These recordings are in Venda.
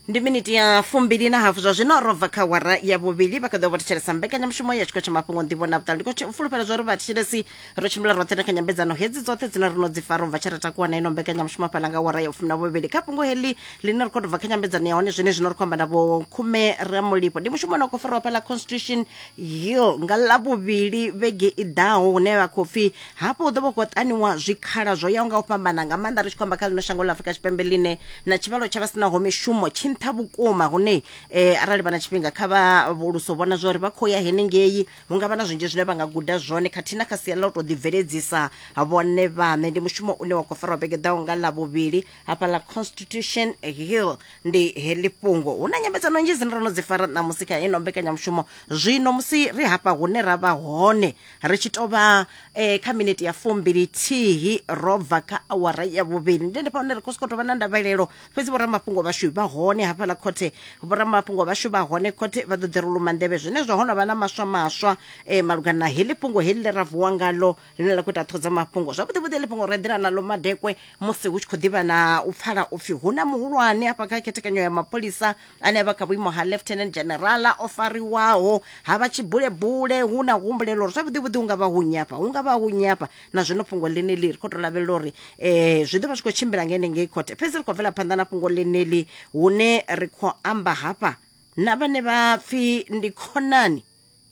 ndi miniti ya fumbili na hafu zwa zwino ro bva kha wara ya vhuvhili vha kha ḓo vha thetshelesa mbekanyamushumo ya tshiko tsha mafhungo nḓivho na vhuṱali ndi khou tshi- fulufhela zwa uri vhathetshelesi ro tshimbila roṱhe na kha nyambedzano hedzi dzoṱhe dzine ro no dzi fara u bva tshe ra takuwa na ino mbekanyamushumo fhala nga wara ya fumi na vhuvhili kha fhungo heḽi ḽine ri khou tou bva kha nyambedzano ya hone zwine zwino ri khou amba na vho khume ramulipo ndi mushumo une wa khou fariwa fhala constitution hill nga ḽavhuvhili vhege i ḓaho hune vha khou pfi hafho hu ḓo vha khou ṱaniwa zwikhala zwo yaho nga u fhambana nga maanḓa ri tshi khou amba kha ḽino shango ḽa afurika tshipembe ḽine na tshivhalo tsha vha sinaho mishumo tshi nṱha vhukuma hune eh, arali vha na tshifhinga kha vha vhuluso vhona zwa uri vha khou ya henengei hu nga vha na zwinzhi zwine vha nga guda zwone khathihi na kha sia ḽa u tou ḓibveledzisa vhone vhaṋe ndi mushumo une wa khou farwa vhege ḓaho nga ḽa vhuvhili hafha ḽa constitution hill ndi heḽi fhungo hu na nyambedzano nnzhi dzine ro no dzi fara ṋamusi kha ino mbekanyamushumo zwino musi ri hafha hune ra vha hone ri tshi tou vha eh, kha minete ya fumbili thihi ro bva kha awara ya vhuvhili ndi ndifha hune ri khou sokou tou vha na ndavhelelo fhedzi vhoramafhungo vhashu vha hone hafhaḽa khothe vhoramafhungo vhashu vha hone khothe vha ḓo ḓi ri luma nḓevhe zwenezwo ho no vha na maswa maswa eh, malugana na heḽi fhungo heḽi ḽe ra vuwa ngalo ḽine ḽa khou ita ṱhodza mafhungo zwavhuḓivhuḓi heḽi fhungo ro eḓela naḽo madekwe musi hu tshi khou ḓivha na u pfala upfhi hu na muhulwane hafha kha khethekanyo ya mapholisa anevha kha vhuimo ha lieutenant general o fariwaho ha vha tshibulebule hu na humbulelo uri zwavhuḓi vhuḓi hu nga vha hu nyafha hu nga vha hu nyafha na zwino fhungo ḽeneḽi ri khou tou lavhelela uri um zwi ḓo vha zwi khou tshimbila nga henengei khothe fhedzi ri khou bvela phanḓa na fhungo ḽeneḽi hune ri khou amba hafha na vhane vha pfhi ndi khonani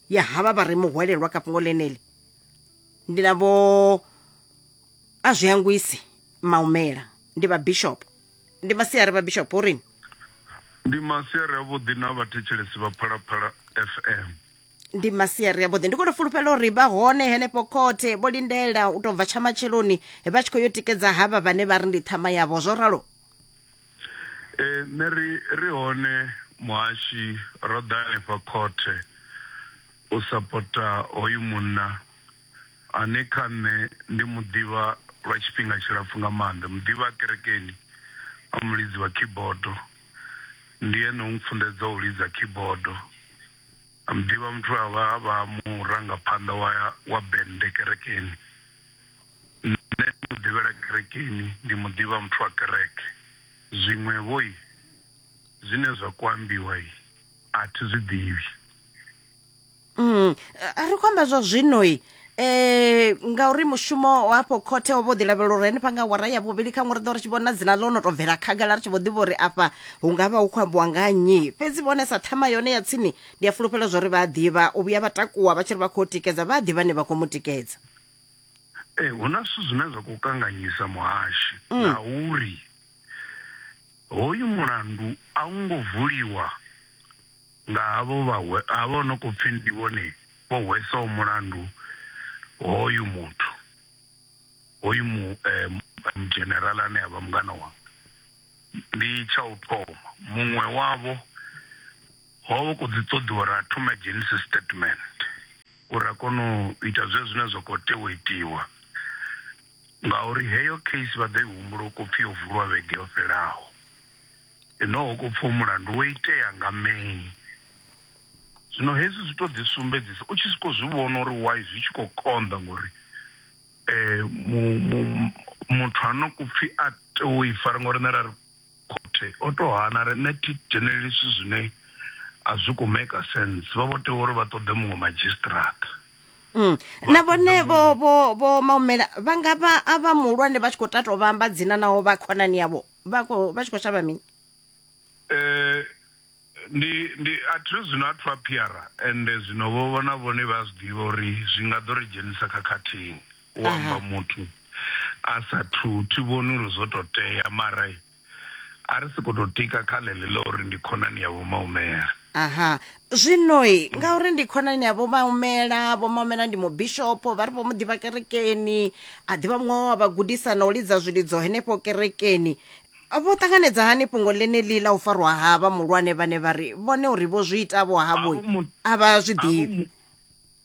ya havha vha re muhwelelwa kha fhungo ḽeneḽi ndi na vho a zwi hangwisi maumela ndi vha bishop ndi masiari vha bishop uri ndi masiari avhuḓi na vhathetshelesi vha phalaphala fm ndi masiari avhuḓi ndi kone fulufhela uri vha hone henefho khothe vho lindela u tou bva tsha matsheloni vha tshi khou yo tikedza havha vhane vha ri ndi ṱhama yavho zwo ralo ee nṋe ri ri hone muhashi ro ḓa hanefha khothe u sapota hoyu munna ane kha nṋe ndi mu ḓivha lwa tshifhinga tshilapfu nga maanḓa, muḓivhi a kerekeni a mulidzi wa khibodo. Ndi ene o mpfunḓedzaho u lidza khibodo. A muḓivha muthu a vha a vha murangaphanḓa wa wa bennde kerekeni. Nṋe ndi mu ḓivhela kerekeni, ndi mu ḓivha muthu wa kereke. Zwiṅwevho i zwine zwa kho ambiwa i a thi zwi ḓivhi. mm, ri khou amba zwa zwinoi eh ngauri mushumo hafho khothe o vho ḓi lavhelela uri henefha nga wara ya vhuvhili kha ṅwari ḓo ri tshi vhona dzina ḽo no tou bvela khagala ri tshi vho ḓivha uri afha hu nga vha hu khou ambiwa nga nnyi fhedzi vhone sa ṱhama yone ya tsini ndi a fulufhela zwa uri vha a ḓivha u vhuya vha takuwa vha tshi ri vha khou tikedza vha a ḓivha ne vha khou mu tikedza ee hu na zwithu zwine zwa khou kanganyisa muhashi mm. na uri hoyu mulandu a u ngo vuliwa Nga havho vha havho no khou pfi ndi vhone vho hwesaho mulandu hoyu muthu, hoyu mu mudzhenerala ane a vha mungana wanga. Ndi tsha u thoma muṅwe wavho ho vha hu khou ḓi ṱoḓiwa uri a thome a dzhenise statement uri a kone u ita zwezwo zwine zwa khou tea u itiwa ngauri heyo case vha ḓo i humbula hu khou pfi yo vuliwa vhege yo fhelaho. Enoho ko pfa u mulandu wo itea nga May. Zwino hezwi zwi tou ḓisumbedzisa, u tshi sokou zwi vhona uri why zwi tshi khou konḓa ngori muthu ha no ku pfi a tea u i fara ngori nṋe ra ri khothe o tou hana ri nṋe thi dzheneleli zwithu zwine a zwi khou maker sense vha vho tea uri vha ṱoḓe muṅwe madzhisiṱiraṱa. Na vhone vho vho vho maumela vha nga vha a vha muhulwane vha tshi khou tato vha amba dzina naho vha khonani yavho. vha khou- vha tshi khou shavha mini Eh, ndi ndi a thi zwino a thu a phiara ende zwino vho vhona vhone vha zwi ḓivha uri zwi nga ḓo ri dzhenisa khakhathini u amba muthu a sa thu thi vhoni uri zwo tou tea mara a ri si khou tou tika kha ḽeḽi ḽa uri ndi khonani ya vho maumela Aha. Zwino-i, ngauri ndi khonani ya Vho Maumela, Vho Maumela ndi mubishopo, vha ri vho mu ḓivha kerekeni, a ḓivha muṅwe wa vha gudisa na u lidza zwilidzo henefho kerekeni. Vho ṱanganedza hani fhungo ḽeneḽi ḽa u farwa ha vha muhulwane vhane vha ri vhone uri vho zwi ita vho havho Havho mu- a vha zwi Havho ḓivhi? mu-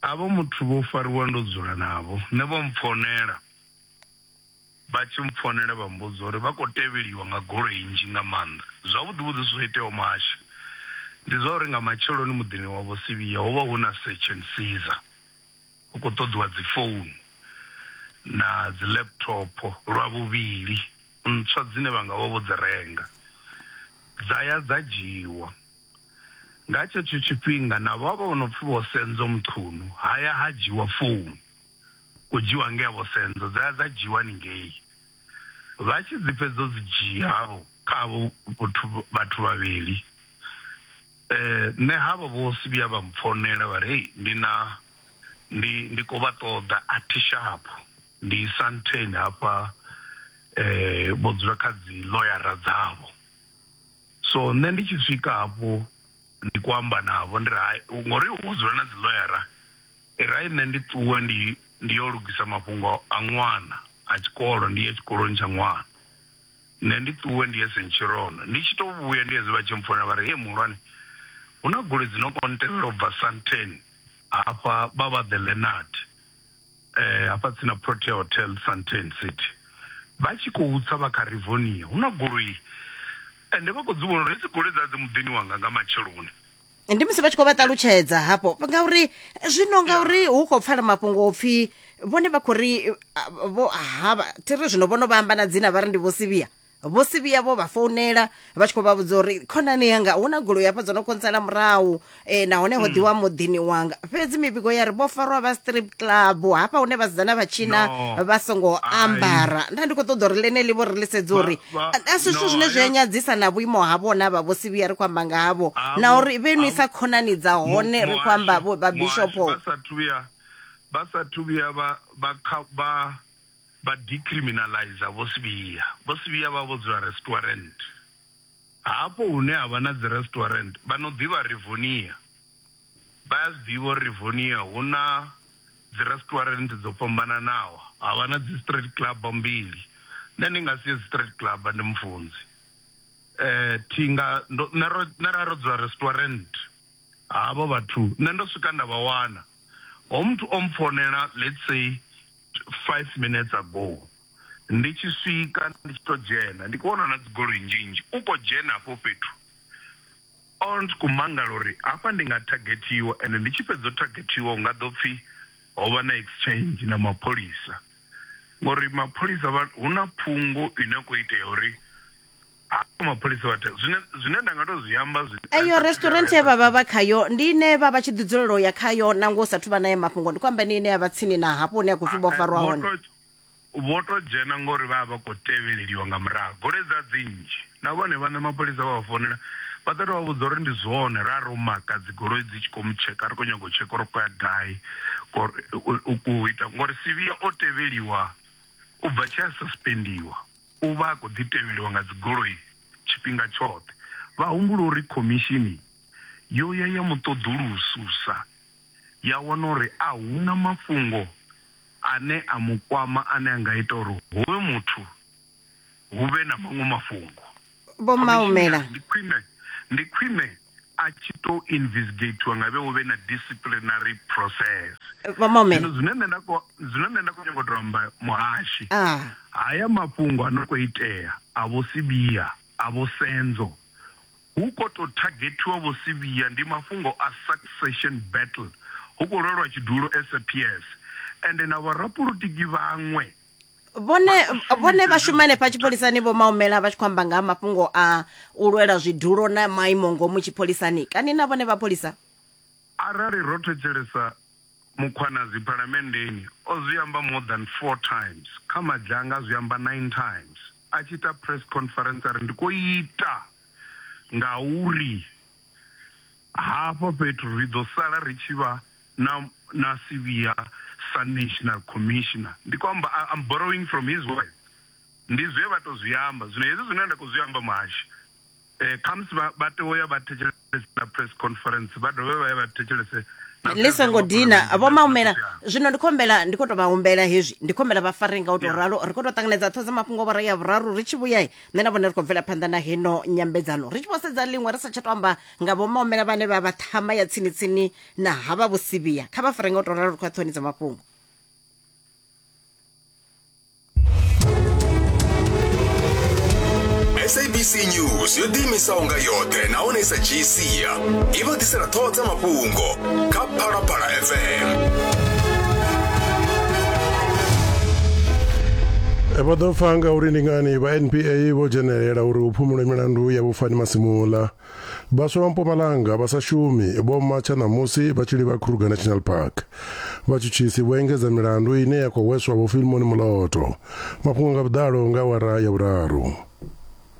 havho muthu vho fariwa ndo dzula navho nṋe vho mpfonela Vha tshi mpfonela vha mmbudza uri vha khou tevheliwa nga goloi nnzhi nga maanḓa. Zwavhuḓi-vhuḓi zwo iteaho muhashi ndi zwa uri nga matsheloni muḓini wa Vho Sivhiya ho vha hu na search and seizer, hu khou ṱoḓiwa dzifounu na dzi-laptop lwa vhuvhili ntswa dzine vha nga vha vho dzi renga. Dza ya dza dzhiiwa. Nga tshetsho tshifhinga navho havha vho no pfi Vho Senzo Mchunu ha ya ha dzhiiwa founu. khou dzhiwa ngei havho senzo dza ya dza dzhiwa haningei vha tshi dzi fhedza dzi dzhia havho kha havho vhathu vhathu vhavhili nṋe havho vho si vhuya vha mpfonela vha ri ndi na ndi ndi kho vha ṱoḓa a thi shapu ndi isa ntheni hafha vho dzula kha dzi ḽoyara dzavho so nṋe ndi tshi swika hafho ndi kho amba navho ndi ri hai ngori hu dzula na dzi ḽoyara. Irai nṋe ndi ṱuwe ndi ndi yo lugisa mafhungo a ṅwana a tshikolo ndi ye tshikoloni tsha ṅwana. Nṋe ndi ṱuwe ndi ye Centurion ndi tshi to vhuya ndi hezwi vha tshi mpfonela vha ri hee muhulwane hu na goloi dzi no kho ntevhela ubva Sandton hafha vha vha The Leonard hafha tsini na Protea Hotel Sandton City vha tshi khou tsa vha kha Rivonia hu na goloi ende vha kho dzi vhona uri hedzi goloi dza dzi muḓini wanga nga matsheloni. ndi musi vha tshi khou vha ṱalutshedza hafho ngauri zwino ngauri hu khou pfala mafhungo opfhi vhone vha khou ri vho havha thi ri zwino vhono vha amba na dzina vha ri ndi vho sivhiya vho sivhiya vho vha founela vha tshi khou vha vhudza uri khonani yanga hu na goloi hafha dzo no kontsela murahu um nahone ho mm. ḓiwa muḓini wanga fhedzi mivhigo ya ri vho farwa vha strip club hafha hune vhasidzana vha tshina vha songo ambara nda ndi khou ṱoḓa uri ḽeneḽi vho ri ḽisedza uri asi zwithu zwine zwi a nyadzisa na vhuimo havho na vha vho sivhiya ri khou amba nga havho na uri vhe no isa khonani dza hone ri khou amba vho ba bishopo vha sa thuya vha sa thuya vha vha vha vha decriminalize vho sivhiya vho sivhiya vha vho dzula restaurant hafho hune ha vha na dzi restaurant vha no ḓivha rivonia Vha a zwi ḓivha uri Rivonia hu na dzirestwarenthe dzo fhambananaho, ha vha na dzistraight club mbili. Nṋe ndi nga si ye dzistraight club, ndi mufunzi. Thi nga, ndo, nṋe ro, nṋe ra ro dzula restwarenthe. Havho vhathu nṋe ndo swika nda vha wana. Hoyo muthu o mpfonela let's say five minutes ago, ndi tshi swika ndi tshi tou dzhena ndi khou vhona hu na dzigoloi nzhinzhi, u khou dzhena hafho fhethu. Old ku mangala uri hafha ndi nga thagethiwa ende ndi tshi fhedza u thagethiwa hu nga ḓo pfi ho vha na exchange na mapholisa ngori mapholisa vha hu na phungo ine khou itea uri ha mapholisa vha zwine zwine nda nga to zwi amba zwi eyo restaurant ye vhavha vha khayo ndi ine vha vha tshi ḓi dzulela u ya khayo nangwe u sa thuvha naye mafhungo ndi khou amba ine ine ya vha tsini na hafho hune ya khou pfi vho farwa hone vho tou dzhena ngauri vha vha vha khou tevheleliwa nga murahu. Goloi dza dzi nnzhi na vhone vhaṋe mapholisa vha vha founela vha ḓo tou vha vhudza uri ndi zwone ra ro maka dzi goloi dzi tshi khou mu tsheka ri khou nyaga u tsheka uri u khou ya gai ngori u ita ngori Sibiya o tevheliwa u bva tshi a suspendiwa u vha a khou ḓi tevheliwa nga dzi goloi tshifhinga tshoṱhe. Vha humbula uri khomishini yo ya ya mu ṱoḓulususa ya wana uri a huna mafhungo ane a mu kwama ane a nga ita uri hoyu muthu hu vhe na maṅwe mafhungo. Vho Maumela. Ndi khwine, ndi khwine a tshi tou investigatiwa nga vhe hu vhe na disciplinary process. Vho Maumela. Zwino zwine nṋe nda khou zwine nṋe nda khou nyanga u tou amba muhashi. Ah. Haya mafhungo a no khou itea a vho Sibiya, a vho Senzo Hu khou tou thagethiwa Vho Sibiya ndi mafhungo a succession battle, hu khou lwelwa tshidulo as a PS ende na vhorapolotiki vhaṅwe vhone vhone vha shuma henefha tshipholisani vho maumela vha tshi khou amba nga ha mafhungo a u lwela zwidulo na maimo ngomu tshipholisani kani na vhone vha pholisa arali ro thetshelesa Mkhwanazi Phalamenndeni o zwi amba more than four times, kha Madzhanga a zwi amba nine times, a tshi ita press conference a ri ndi khou ita ngauri hafha fhethu ri ḓo sala ri tshi vha na na sivhiya sa National Commissioner. Ndi khou amba, I'm borrowing from his words, ndi zwe vha tou zwi amba. Zwino hezwi zwine nda khou zwi amba Muhashi, Eh, khamusi vha vha tea uya vha thetshelese na press conference vha dovhe vha ye vha thetshelese na ḽi songo President dina Mapholisa. vho maumela zwino ndi khou humbela ndi khou tou vha humbela hezwi ndi khou humbela vha fare nga u tou ralo ri khou tou ṱanganedza ṱho dza mafhungo vhora ya vhuraru ri tshi vhuya nṋe na vhone ri khou bvela phanḓa na heno nyambedzano ri tshi vho sedza ḽiṅwe ri sa tsha tou amba nga vho maumela vhane vha vha ṱhama ya tsini tsini na havha vhosivhiya kha vha fare nga u tou ralo ri khou ya ṱhoni dza mafhungo sabc news yo ḓiimisaho nga yoṱhe nahone i sa dzhii sia i vha ḓisela ṱhoho dza mafhungo kha phalaphala fm vho ḓo pfa nga uri ndi ngani vha npa vho dzhenelela uri hu phumulwe milandu ya vhufani masimula Vhaswa vha Mpumalanga vha sa shumi vho matsha ṋamusi vha tshi livha Kruger National Park. Vhatshutshisi vho engedza milandu ine ya khou hweswa Vho Filmoni Moloto. Mafhungo nga vhuḓalo nga awara ya vhuraru.